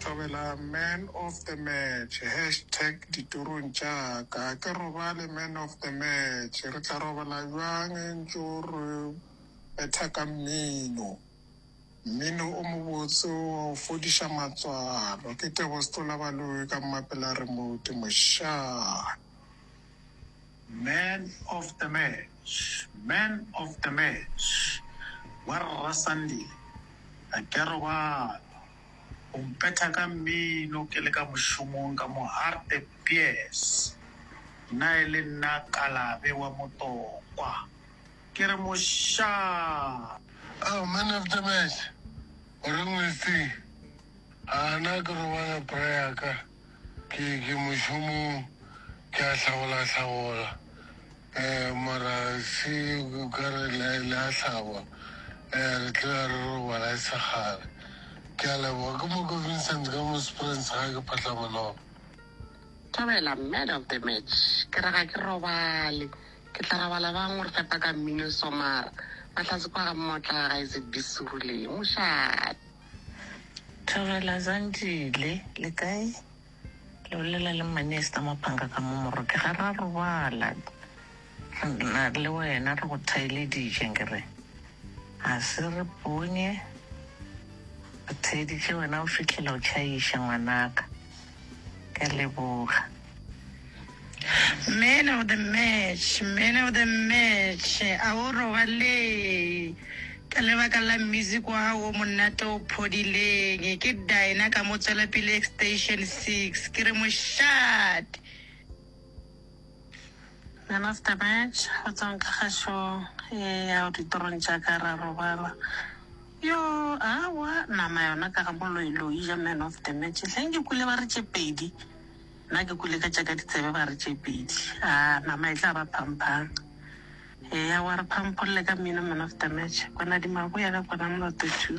Thobela man of the match hashtag ditorong tša ka a ke robale man of the match re tla robala bjang e ntšo re betha ka mmino mmino o mobotse wa go fodiša matswalo ke tebosetolabaloyi ka mmapela remote mošaa. Man of the match, man of the match, Warra Sandile, ga ke a robala, o mpetha ka mmino ke le ka mošomong ka mo Hartebees, nna e le nna Kalabe wa Motokwa, ke re mošaa! Oh, man of the match, o reng Westie? Aa, na ke robala bra ya ka? Ke ke mošomong ke a hlagola hlagola eh mara se ka re le le a hlaba eh re tle re robala e se kgale ke a leboga ke mo ko Vincent ka mo Springs ga ke phatla monolo Thobela, man of the match. Ke re ga ke robale. Ke tla robala bang o re fepa ka mmino so mara fa tlase kwa ga mmotla ga e se be suruleng. Mošate. Thobela Zandile, le kae? Le bolela le Mmane Esther Maphanga ka mo Moroke. Ga ra robala na le wena, re go thaeleditše nkere ga se re ponye re theeditše wena o fitlhela o tšhaiša ngwanaka. Ka leboga. Man of the match, man of the match, a o robalee ka lebaka la music wa gago o monate o phodileng. Ke Dinah ka mo tswelapele extension six, ke re mošate. Nana Stabetš, go tswang ka kgašong e yago ditorong tša ka, ra robala. Yoo, aowa, nama yona ka ga boloiloi ja man of the match. Hleng ke kwele ba re tše pedi, nna ke kwele ka tša ka ditsebe ba re tše pedi. Aa, nama e tla ba phampang. Eya, wa re phampholle ka mmino man of the match. Kwanadimagwe ya ka kwanamoloto two.